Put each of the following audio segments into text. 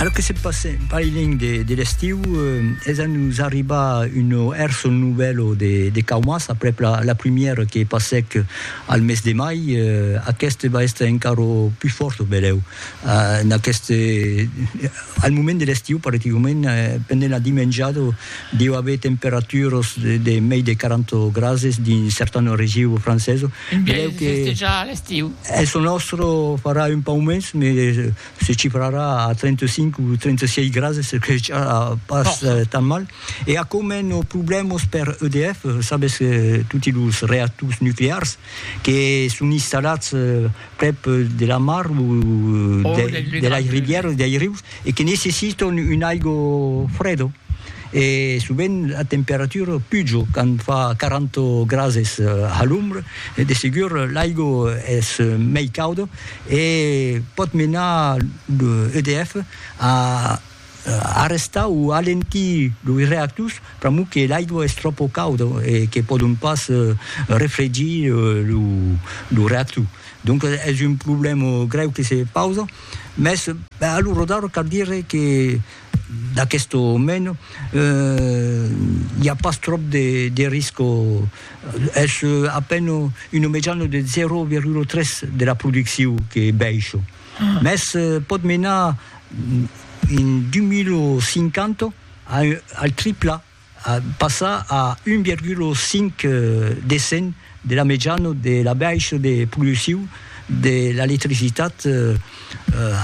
Lo que se passe en Pailing de l'estiu es a nos arribar un hèrçol novèlo de caumas aprèp la primièra que passèc al mes de mai. Aqueste va èster encara pus fòrt o belèu al moment de l'estiu, particularment pendent la dimenjada. Deu aver temperaturas de mei de 40 grases dins certane region francesa. Beleu que festejar a l'estiu. Es lo nòstre farà un pauc mens, me se cifrarà a 35 o 36 grases, çò que ja pas tan mal. E aquò mena problèmas per EDF, sabes, toti los reactors nuclears que son installats prèp de la mar o de las rivièras, dei rius, e que necessitan un aigo freda. E sovent la temperatura puja quand fa 40 grases a l'ombra, de segur l'aigo es mei cauda e pòt menar lo EDF a Arrestar o alentir loi reactors pr'amor que l'aigua es tròpo cauda e que pòdon pas refregir lo reactor. Donc es un problèma grèu que se pausa, mès alora d'ara cal dire que d'aquesta mena i a pas tròp de risca, es a pena una mejana de 0,3 de la produccion que baisha. mès pòt menar en 2050 al tripla, passar a 1,5 de cent de la mejana de la baixa de produccion de l'electricitat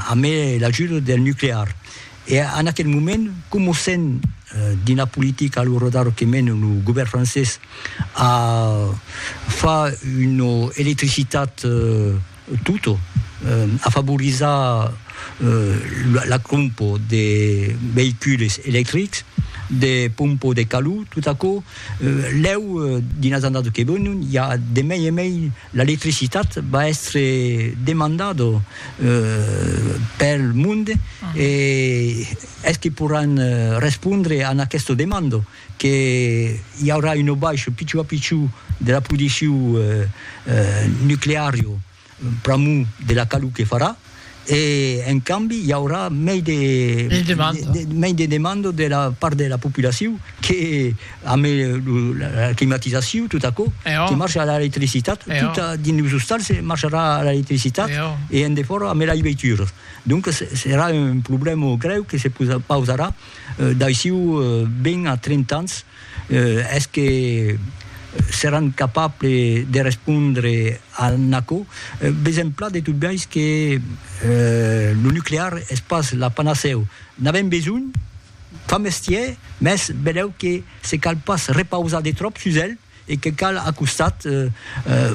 amé l'ajuda del nuclear. E en aquel moment, coma sent dins la politica lo radar que mena lo govèrn francés a far una electricitat Tutto, a favorizar la crompo de veicules electrics, de pompo de calor, tot aquò, lèu dins las annadas que venon i a de mei e mei l'electricitat va èstre demandada pel monde e es que poràn respondre a aquesta demanda? que i aurà un aubaish pichou a pichou de la produccion nucleario pr'amor de la calor que farà e en cambi i aurà mei de mei de demanda de la part de la populacion que ame la climatizacion tot aquò que marcha a l'electricitat tot dins los ostals marcharà a l'electricitat e en defòra ame lei veituras donc serà un problèma grèu que se pausarà D'aiçiu 20 a 30 ans, es que seràn capables de respondre a n'aquò? Ves en plan de tot biais que lo nuclear es pas la panacèu. N'avèm besonh? Fa mestièr, mès benlèu que se cal pas repausar de tròp sus el. e que cal a costat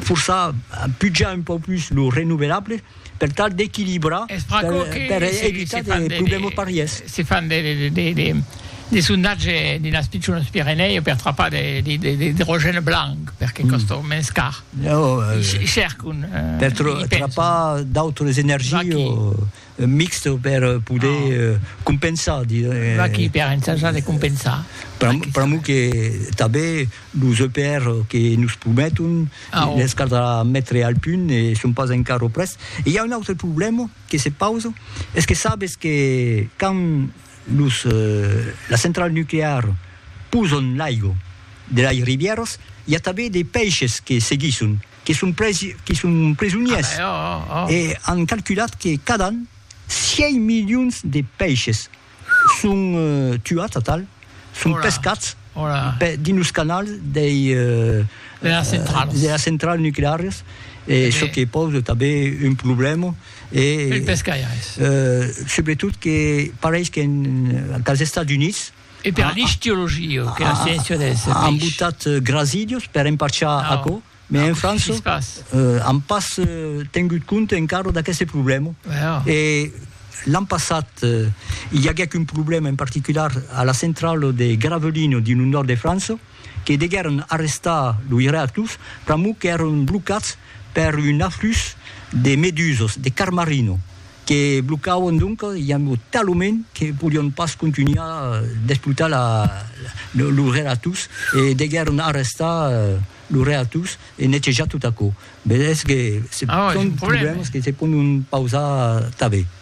forçar pujar un pauc plus lo renovelable per tal d'equilibrar per evitar de problèmas parièrs. Se fan de sondatge dins las pichonas Pirenèu per trapar de l'idrogène blanc perque còsta mens car. Chercon. Per trapar d'autres energies o Mixt per poder compensar, diguem. Pas qui per ensajar de compensar. Pr'amor que tanben los EPR que nos prometon, les caldrà metre al punt e son pas encara près. E i a un autre problèma que se pausa, es que sabes que quand los las centrals nucleares posan l'aiga de las rivièras, i a tanben de peishes que seguisson. que son presonièrs e an calculat que cada an 6 milions de pèishes son tuats, atal, son pescats dins los canals de las centrals nuclearas e çò que pausa tanben un problèma e subretot que pareis qu'entà los Estats Units E per l'istiologia, que la sciéncia dels peish. An botat grasidios per emparchar aquò, mais en França an pas tengut compte encara d'aqueste problèma. E l'an passat i aguèc un problèma en particular a la centrala de Gravelines dins lo nòrd de França, que deguèron arrestar lo Iratus pr'amor qu'èron blocats per un aflux de medusas, de carmarino, que blocavan doncas iambo talament que podián pas contunhar d'explotar lo Iratus e deguèron arrestar lo Iratus e netejar tot aquò. Vedètz que se son problèmas que se pòdon pausar tanben.